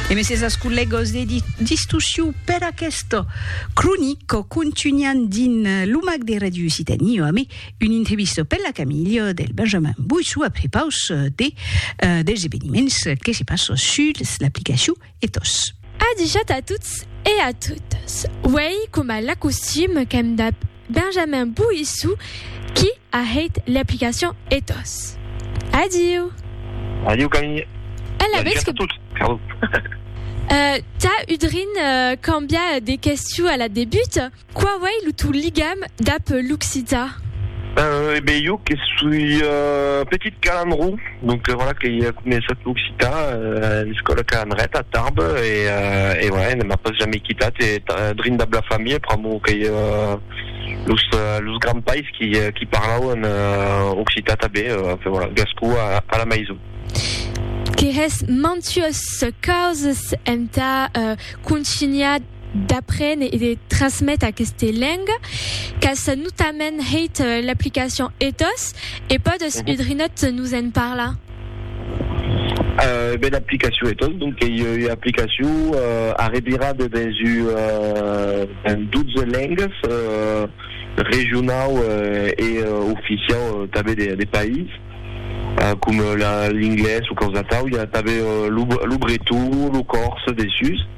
E mes es ascollegos de distussiu per aquest cronic contunhan dins lo mac de Radio Occitanie o amé un intrevisto per la camilha del Benjamin Boissou a prepaus de dels eveniments que se passo suls l'aplicaciu Ethos. Adijat a tots e a totas. Uèi coma l'acostume qu'èm dab. Benjamin Boissou qui a hèit l'aplicacion Ethos. Adiu! Adiu Camille! E la vètz que. Tà udrin cambiar de questiu a la debut, quau ei lo tau ligam dab l'occitan? E ben jo que soi petit calandró. Donc voilà que i a començat l'occitan a l'escòla Ca Andret a Tarbes e voilà ne m'a pas jamei quitat e drin dab la familha pr'amor qu'ei los grands pais qui parlauen occitan tanben enfin voilà gascon a la maison. Que hè's mantues causas entà contunhar d'aprene e de trasmete aqueste lenga qu'as notament hèit l'aplicacion ethos e pòdes udrinòt nos en parlar? Ben aplicacion ethos donc qu'ei ua aplicacion arrevirada dens ua dens 12 lengas regionau e oficiau tanben de de país com l'inglés o quausi atau i a tanben lo breton lo còrse dessús.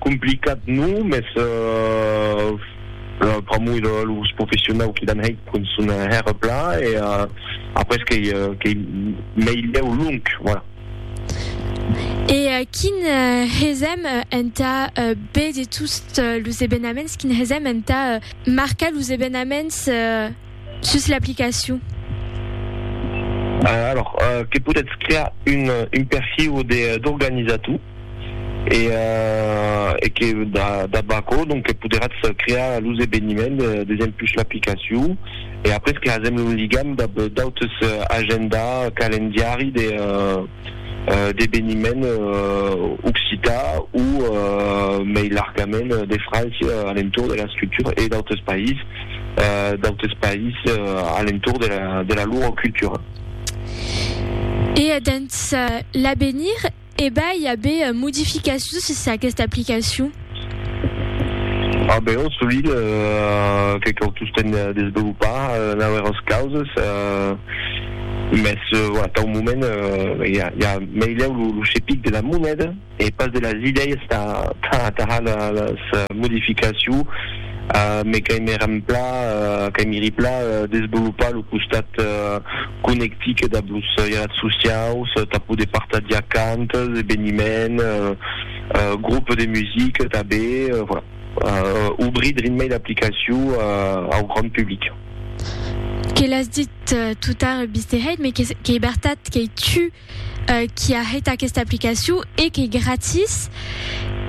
Complicat non, mès pr'amor de los professionau qui l'an hèit cun son hèr pla e après qu'ei meilhèu long, voilà. E quin hesèm entà béder tots los evenaments, quin hesèm entà marcar los evenaments? Sus l'aplicacion. Alors, que podètz crear un un perfiu de d'organizator e e que dab aquò donc que poderatz crear los eveniments d'exempus l'aplicacion e après que hasèm un ligam dab d'autes agenda calendiari de d'eveniment occitan o mei largament de França a l'entorn de la scriptura e d'autres país, d'autres país a l'entorn de la lor cultura. E dens l'avenir, e vai aver modificacions sus aquesta aplicacion? A Beòrn sovint que cau tostemp desvelopar nauèras causes, mès atau moment i a meilèu lo chepic de la moneda e pas de las idèias tà las modificaciu, me qu'aimi rempla qu'aimiri pla desvelopar lo costat conectic dab los jalat sociaus tà poder partagiar cantas, eveniments, Groupe de musique tanben, voilà. Obrir Dreammail aplicacion au grand public. Que l'as dit tout tard Bisteheit, mais qu'ei bertat qu'ei tu qui a hèit aquesta aplicacion e qu'ei gratis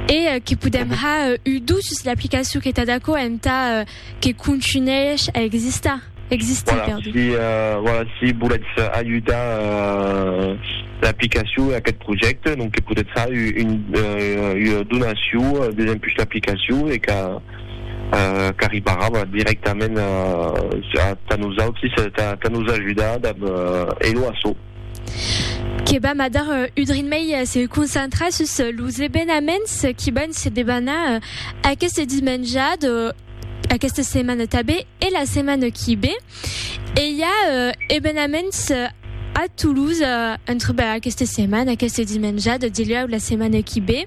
e que podem har udusses l'aplicacion que t'at aquò entà Que contunhèish a existar, existir, perdon. Voilà, si, voilà, si volètz ajudar l'aplicacion e aquest projècte, donc que podètz far ua donacion desempuish l'aplicacion e qu'a, qu'arribarà, voilà, dirèctament tà nosautris, tà nos ajudar dab Hello Asso. que vam a dar un drin mei se concentrar sus los evenaments qui van se debanar aquest dimenjat aquesta setmana tabé e la setmana qui bé. E i a euh, evenaments euh, a Toulouse euh, entre bah, aquesta setmana, aquest dimenjat, dilhèu la setmana qui bé.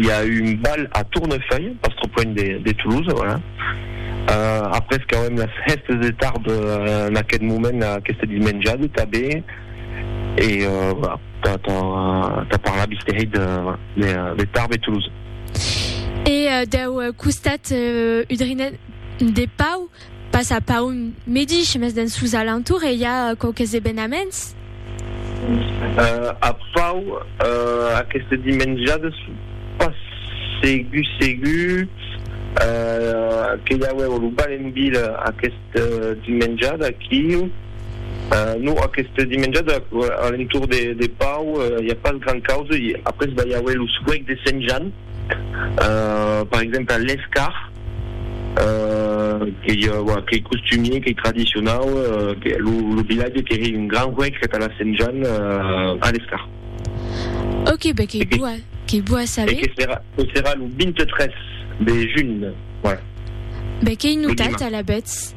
i a eu un bal a Tournefeuille, pas trop loin de Toulouse, voilà. Euh, après qu'auem las hèstes de tard en aqueth moment, aquesta dismenjada tabé, e voilà, tà, tà, tà parlar bistereit de, de, de Tarbes e Toulouse. E deu costat udrinenc de Pau, Pas a Paun medish, mes dens sos alentours e i a quauques evenaments. A Pau, aqueste dimenjades, pas segur segur que i auèvo lo bal en vila aqueste dimenjade aquiu. Non, aqueste dimenjade a l'entorn de Pau i a pas grand causa. Après, va i auer lo suec de Sent Jan. per exemple l'escar qu'ei qu'ei costumier qu'ei tradicionau lo vilatge qu'ei un gran huec que tà la sent Jan a l'escar ok be qu'ei boa qu'ei boa saber que serà que serà lo 23 de junh voilà be qu'ei notat alavetz.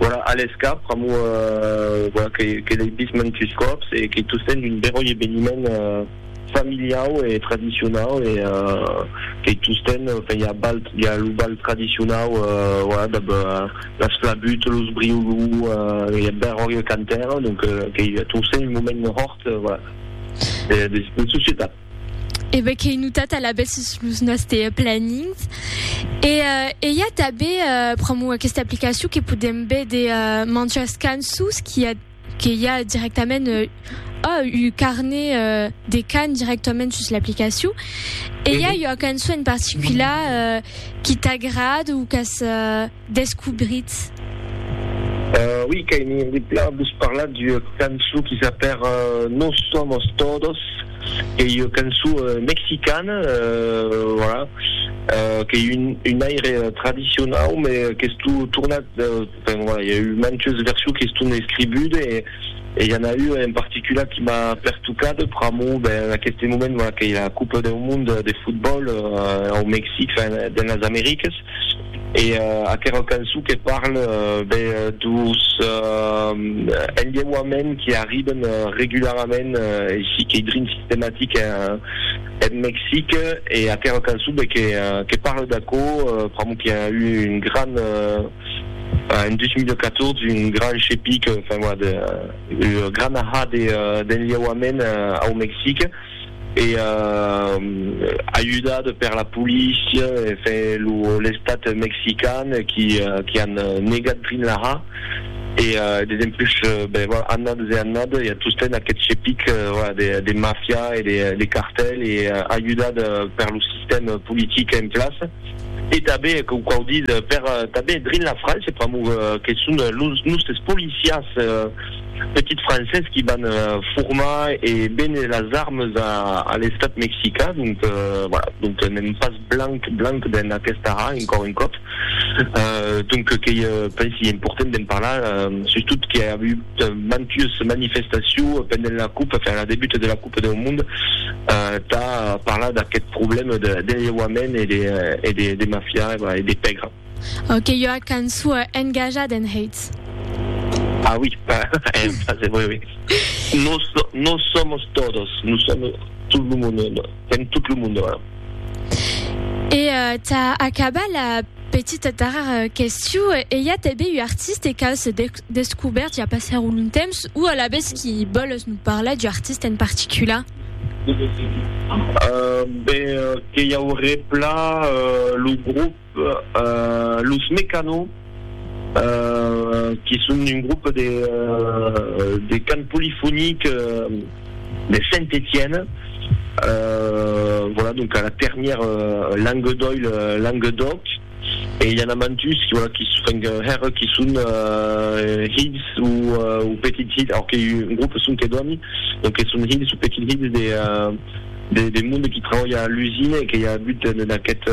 Voilà, a l'escap, pr'amor voilà que l'ei vist mantus còps e que tot sent un beròi eveniment familiau e tradicionau e que tot sent enfin i a bal, i a lo bal tradicionau voilà dab las flabuts, los briolou, i a beròi e cantar, donc que tot sent un moment hòrt voilà de societat. e be qu'ei notat alabèth sus los nòste plannings. E, e i a tanben pr'amor aquesta aplicacion que podem be de manchas cançons qui a que i a directament ò un carnet de can directament sus l'aplicacion. E i a ua cançon en particular qui t'agrada o qu'as descubritz? Ui, qu'ai mir de plan vos parlar d'ua cançon qui s'apèr Nos somos todos, qu'ei ua cançon mexicana, voilà, qu'ei un aire tradicionau, me qu'estó tornat, enfin voilà, i a eu mantes versions qui estón escribudes, e i a n'a ua en particular qui m'a pertocat, pr'amor, ben, en aqueste moment, voilà, qu'ei la Copa deu Monde de Fotbòl au Mexic, enfin, dens las Americas. E aquerò cançon que parle be dos enlheuaments qui arriben regularament aicí qu'ei drin sistematic en Mexic e aquerò cançon be que parle d'aquò pr'amor qui a eu un gran en 2014 un gran chepic enfin voilà de gran ahà d'enlheuaments au Mexic. e ajudat per la polícia e fe l'estat mexican qui an negat Drinlaha e desempús annades e annades i a tosten aquest chepic de mafia e de cartel e ajudat per lo sistèm politic en plaça e tanben que quau ditz per tanben Drinlafrança pr'amor que son los nostres policias petits Français qui van formar e véner las armes a l'Estat Mexicain, donc voilà, donc n'èm pas blanc blanc dens aquesta arra, encòr un còp, donc qu'ei pensi important d'en parlar, sustot qu'i a avut mantues manifestacions pendent la coupe, enfin la debuta de la coupe deu monde, tà parlar d'aqueth problème de lheuament e de mafia e de pègra. Aqueua cançua engaja d'en Heitz. Ah oui, en francés, oui, oui. Nos, nos somos todos, nous sommes tout lo monde, sèm tot lo monde, voilà. E tà acabar la petita darrèra question, e i a tanben ua artiste qu'aus descobèrt ja passèra un long temps, o alavetz qui vòles nos parlar d'ua artiste en particular? Ben, que i auré plan lo groupe. Los Mecano, que son un grop de cant polifonic de Saint-Etienne, voilà, donc a la ternièr Languedoil, Languedoc, e i a na mantus voilà qui enfin hèr qui son hilhs ou petits hilhs, alors que un grop son que dòni, donc que son hilhs ou petits hilhs de de monde qui trabalha a l'usina e que i a agut en aquest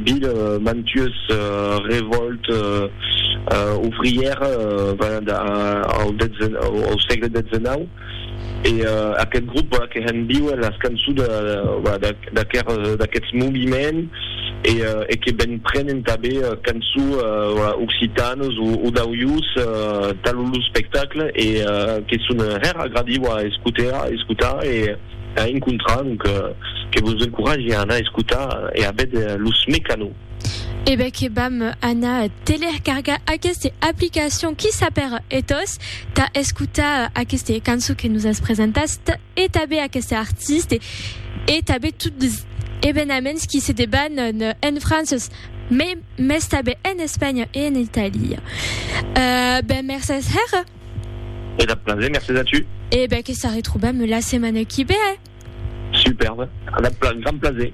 vil mantues revòlte ouvrière venent au sègle xix e aquest grop que hèn viuer las cançons d'aquests moviments. e que ben prenen tanben cançons occitanes o d'aujós talon lo spectacle e que son hèr agradiu a escotar e a encontrar donc que vos encoratge a anar escotar e a véder los Mecano. E ben que vam anar telercargar aqueste aplicacion qui sap per etòs tà escotar aqueste cançon que nos as presentat. e tanben aqueste artiste e tanben tot los evenaments qui se deban en Frances mès tanben en Espanha e en Italia. Ben mercés hèra. E dab plaser, mercés a tu. E ben que s'arretrobam la setmana qui ve. Superbe, dab grand plaser.